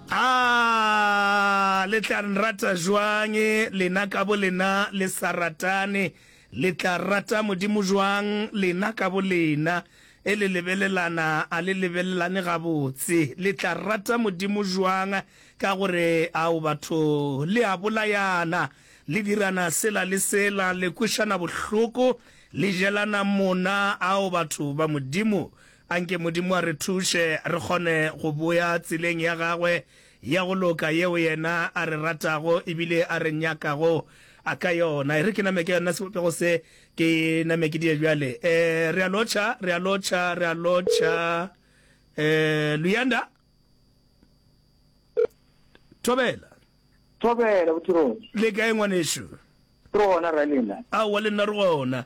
Aah le tla nrata jwang lena ka bo lena le sa ratane, le tla rata Modimo jwang lena ka bo lena e le lebelelana a le lebelelane gabotse? Le tla rata Modimo jwang ka gore ao batho le a bolayana, le dirana sela le sela, le kwešana bohloko, le jelana mona ao batho ba Modimo? A nke Modimo a re thuše re kgone go boya tseleng ya gagwe ya go loka yeo yena a re ratago e bile a re nyakago ka yona. E re ke name ka yona sebopego se, ke name ke die bjale. Eh, re a lotšha, re a lotšha, re a lotšha. Eh, Luyanda? Thobela? Thobela, bothong. Le kae ngwanešu? Re gona, Ralena. Aowa, le nna re gona.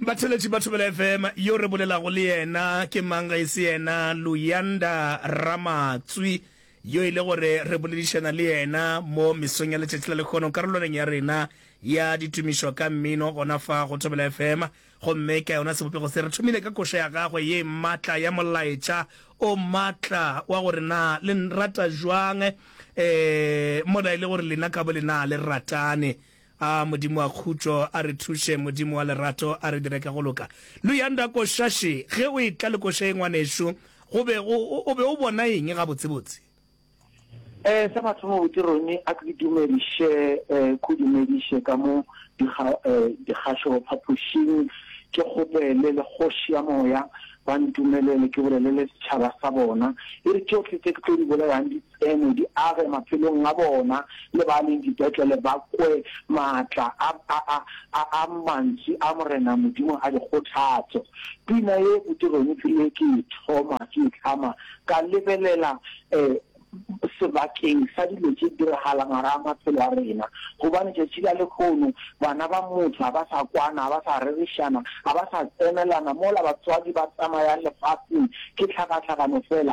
Batheletši ba Thobela FM, Yo re bolelago le yena ke mang ge e se yena Luyanda Ramatswi, yo e le gore re boledišana le yena mo mesong ya letšatši la lekgono karolwaneng ya rena ya ditumišo ka mmino gona fa go Thobela FM. Gomme ka yona sebopego se, re thomile ka koša ya gagwe ye matla ya molaetša o matla wa gore na le nrata bjang, ee, mola e le gore lena ka bolena le ratane. A Modimo wa khutšo a re thuše, Modimo wa lerato a re dire ka go loka. Luyanda Koshashi, ge o etla lekošae ngwanešu, go be go, o be o bona eng gabotsebotse? Eh, sa mathomo botse Ronnie, a ke go dumediše, eh, ke go dumediše ka mo dikga, eh, dikgašo phapošing, ke kgopele le Kgoši ya Moya ba ntumelele ke bolelele setšhaba sa bona. E re tšohle tše ke tlo di bolelang di, Ene di age maphelong a bona, le ba leng dipetlele ba kwe maatla a, a, a, a, a Mantsi a Morena Modimo a dikgothatso. Pina ye botse Roniki le ke e thoma, ke e hlama, ka lebelela eh, sebakeng sa dilo tše diragala ngwaga a maphelo a rena. Gobane tšatši la lekhono, bana ba motho ga ba sa kwana, ga ba sa rerišana, ga ba sa tsenelana, mola batswadi ba tsamayang lefaseng ke tlhakatlhakano fela.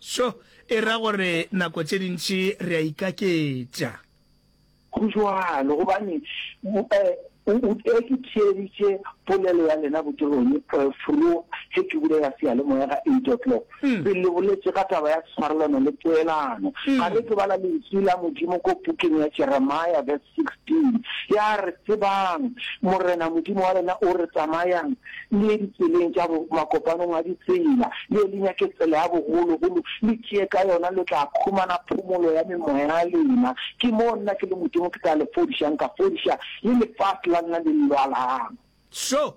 Seo e ra gore nako tše dintši re a ikaketša. Go bjalo gobane o ke theeditše polelo ya lena botegong fro ge ke bulela seyalemoya ka eight o'clock, pele le boletše ka taba ya tshwarelano le poelano. Ga le ke bala Lentšu la Modimo ko pukeng ya Jeremia, 16, ya re, Tsebang Morena Modimo wa lena o re, Tsamayang le ye ditseleng tša bo, makopanong a ditsela, le ye le nyake tsela ya bogologolo, le tšee ka yona, le tla khumana phomolo ya memoya ya lena. Ke moo nna ke le Modimo ke tla le fodišang, ka fodiša le lefase la lena le lwalang. Šo!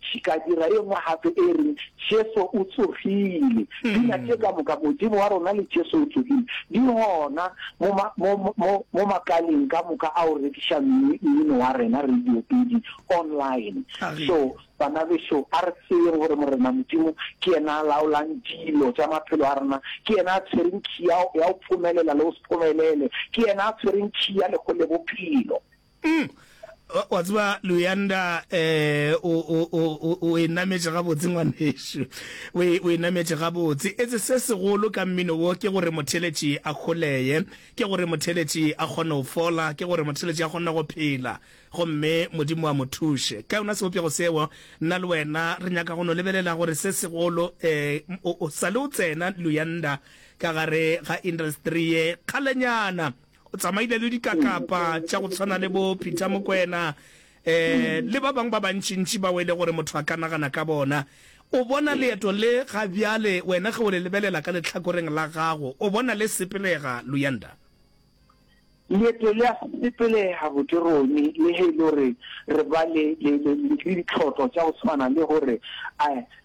Ke ka dira e nngwe gape e reng, Jesu o tsogile. Dina tše ka moka, Modimo wa rona le Jesu o tsogile, di gona mo, mo, mo, mo makaleng ka moka ao rekiša mmino wa rena, radiopedi, online. So, bana bešo, a re tsebeng gore Morena Modimo ke yena a laolang dilo tša maphelo a rena. Ke yena a tshwereng key ya, ya go phomelela le go se phomelele. Ke yena a tshwereng key ya lehu le bophelo. Umm wa tseba Luyanda eh o o o o e nametše ga botse ngwanešu o e o e nametše ga botse etse se segolo ka mmino wo ke gore motheletši a kholeye ke gore motheletši a kgone go fola ke gore motheletši a kgone go phela gomme modimo a mo thuše ka yona sebopego seo nna le wena re nyaka go no lebelela gore se segolo eh o sale o tsena Luyanda ka gare ga industry ye kgalenyana O tsamaile le dikakapa tša go tshwana le bo Peter Mokwena um le ba bangwe ba bantšintši bao e le gore motho a ka nagana ka bona. O bona leeto le ga bjale, wena ge o le lebelela ka lehlakoreng la gago, o bona le sepelega, Luyanda? Leeto le a sepelega gabotse, Ronnie, le ge e le gore re ba le ditlhohlo tša go tshwana le gore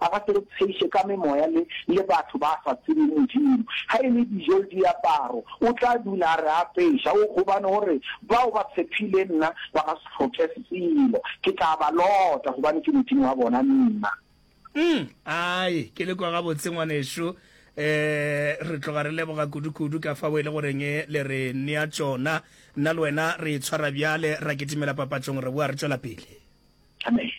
a ba se re tsheiše ka memoya le, le batho ba sa tsebeng Modimo. Ga e le dijo le diaparo, O tla dula a re apeša. O, gobane O re, Bao ba tshepile Nna ba ga se hloke selo. Ke tla ba lota, gobane Ke Modimo wa bona Nna. Umm, ai, ke le kwa gabotse, ngwanešu. E, re tloga re leboga kudukudu ka fao e le goreng e le re nea tšona. Nna le wena re itshwara bjale, ra kitimela papatšong, re boa re tšwela pele. Amen.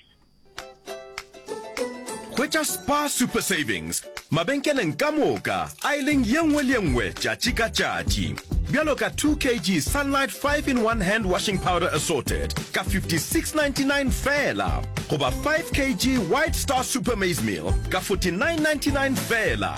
hwetša spa super savings mabenkeleng ka moka a e leng ye nngwe le ye nngwe tšatši ka tšatši bjalo ka 2 kg sunlight 5 in 1 hand washing powder assorted ka 5699 fela goba 5 kg white star super maize meal ka 4999 fela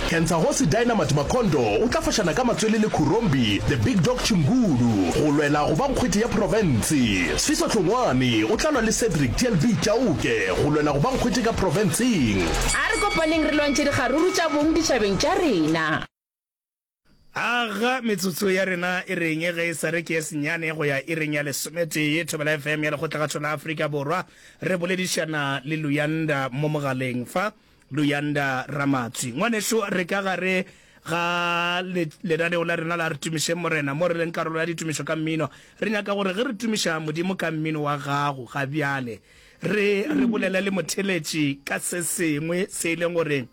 Kentsagosi Dynamite Makhondo o tla fošana ka matswele le Khurombi The Big Dog Chingulu go lwela go ba nkgwete ya profense. Sfiso Hlongwane o tla lwa le Cedric TLB Chauke go lwela go ba nkgwete ka profenseng. A re kopaneng re lwantšhe dikgaruru tša bong ditšhabeng tša rena. Aga metsotso ya rena e reng ge e sa re ke ye senyane go ya ireng ya lesometee? Thobela FM ya Lekgotlagatšo la Afrika Borwa. Re boledišana le Luyanda mo mogaleng fa. Luyanda Ramatswi. Ngwanešu, re ka gare ga le, lenaneo la rena la Re Tumišeng Morena, mo re leng karolo ya ditumišo ka mmino, re nyaka gore ge re tumiša Modimo ka mmino wa gago ga bjale, re, re bolele le motheletši ka se sengwe se e leng gore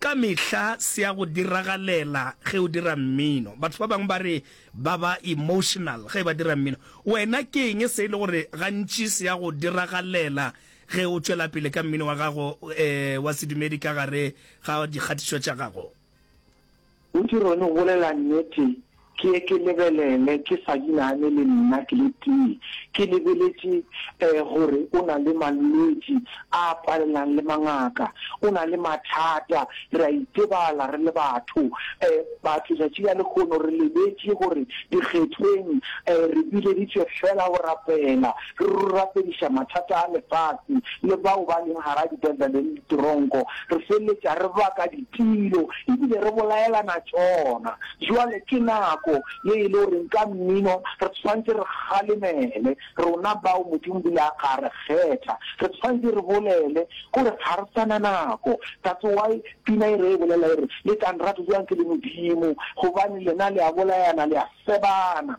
ka mehla se a go diragalela ge o dira mmino. Batho ba bangwe ba re ba ba emotional ge ba dira mmino. Wena ke eng se e le gore gantši se a go diragalela Ge o tšwela pele ka mmino wa gago e, wa sedumedi ka gare ga dikgatišo tša gago. O di rone go bolela nnete, ke ye ke lebelele ke sa di nagane le nna ke le tee. Ke lebeletše e, gore o na le malwetši a palelang le mangaka. O na le mathata, re a itebala re le batho. E, batho tšatši la lekgono re lebetše gore dikgethweng e, re bileditšwe feela go rapela. re rurafediša mathata a lefase le bao ba leng gare dipetlele le ditoronko, re feleletša re baka ditiro e bile re bolaelana tšona. Bjale ke nako ye e le goreng ka mmino re tshwantšhe re kgalemele rona bao Modimo bile a ka re kgetha. Re tshwantšhe re bolele gore ga re sa na nako. That's why pina e re e bolela e re, Le tla nrata bjang ke le Modimo, gobane lena le a bolayana, le a sebana.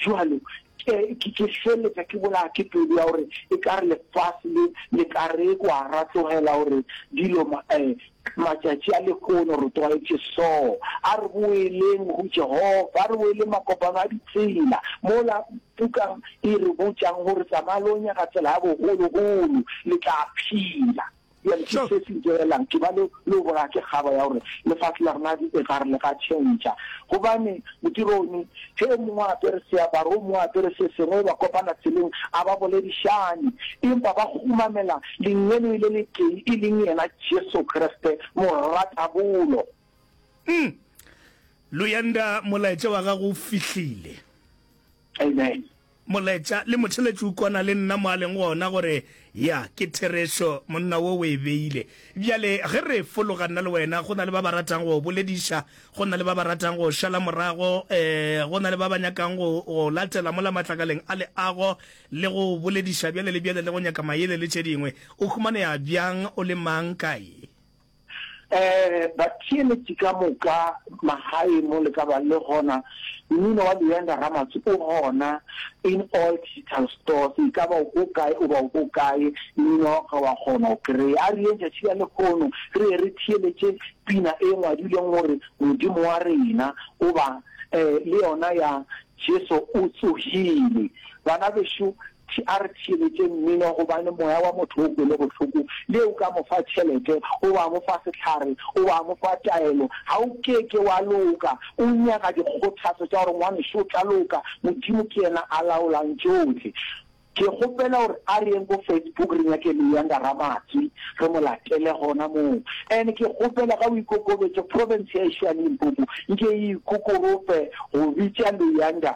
Jwalo, ke, ke, ke feletša ke bolaya ke pelo ya gore e ka re lefase le, le ka re kwa ra tlogela gore dilo ma, eh, matšatši a lehono re tlwaetše so. A re boeleng go Jehofa, a re boeleng makopano a ditsela, mola Puka e re botšang gore tsamaya lo nyaka tsela ya bogologolo, le tla phela. Bjale ke se se ntšerelang, ke ba le le o bolaya ke kgaba ya gore lefase la rena e ka re le ka tšhentšha. Gobane bodironi, ge o mongwe a apere seaparo, o mongwe a apere se sengwe, ba kopana tseleng, a ba boledišane, empa ba kgumamela Lengeloi le letee, e leng yena Jesu Kriste, Moratabolo. Umm. Luyanda, molaetša wa gago o fihlile. Amen. Moletša le motheletši o kwana le nna mo a leng gona gore, Ya, ke therešo, monna wo o e beile. Bjale, ge re fologa nna le wena, go na le ba ba ratang go bolediša, go na le ba ba ratang go šala morago, ee, go na le ba ba nyakang go, go latela mola matlakaleng a leago, le go bolediša bjale le bjale, le go nyaka maele le tše dingwe. O humanea bjang, o le mang, kae? Eh, batheeletši ka moka, magae mo le ka ba le gona, mmino wa Luyanda Ramatsho o gona in all digital stores, e ka ba o ko kae o ba o ko kae, mmino wa gagwe wa kgona go kry-a. A re yeng tšatši la lekgono re ye re theeletše pina e ngwadilweng gore Modimo wa rena, goba eh le yona ya Jesu o tsogile. Bana bešo, A re theeletše mmino gobane moya wa motho o kwele bohloko, le o ka mo fa tšhelete goba wa mo fa sehlare goba wa mo fa taelo, ga o ke ke wa loka. O nyaka dikgothatšo tša gore, Ngwanešu, o tla loka. Modimo ke yena a laolang tšohle. Ke kgopela gore a re yeng ko Facebook re nyake Luyanda Ramatswi, re mo latele gona moo. And ke kgopela ga o ikokobetše, province ya ešo ya Limpopo nke e ikokorope go bitša Luyanda.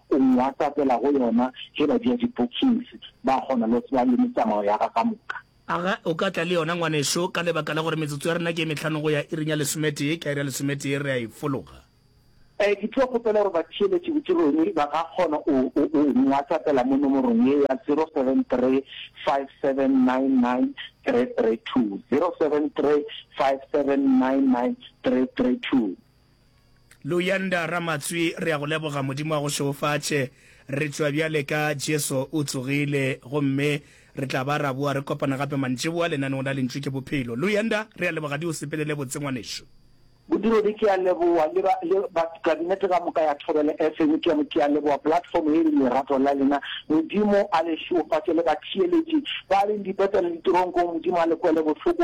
O Nwhatsapela go yona ge ba dia di-bookings, ba kgona le go tseba le metsamao ya ka ka moka. A ga o ka tla le yona, ngwanešu? Ka lebaka la gore metsotso ya rena ke e mehlano go ya iring ya lesometee, ka iri ya lesometee re a e fologa. Ee, ke tlo kgopela gore batheeletši bodirong ba ka kgona go go Nwhatsapela mo nomorong ye ya 0735799332, 0735799332. Luyanda Ramatswi re a go leboga Modimo a go šeofatše re tšwa bjale ka Jesu o tsogile gomme re tla ba ra boa re kopana gape mantšiboa lenaneong la Lentšu ke Bophelo. Luyanda re a leboga di o sepelele botse ngwanešu. Bodiredi ke a leboa le ba le ba kabinete ka moka ya Thobela FM ke a ke a leboa platform ye le lerato la lena Modimo a le šeofatše le batheeletši ba leng dipeta le diteronkong Modimo a le kwele bohloko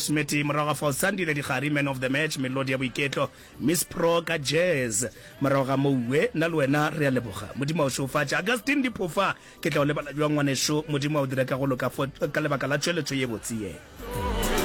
Smitty, morago ga fao Sandile Dikgari, Man of the Match, Melodi ya Boiketlo, Miss Pro ka Jazz. Morago ga moo Uwe, nna le wena re a leboga. Modimo a o šeofatše. Augustine Diphofa, ke tla o lebala bjang ngwanešu? Modimo a o dire ka go loka fo, ka lebaka la tšweletšo ye botse ye.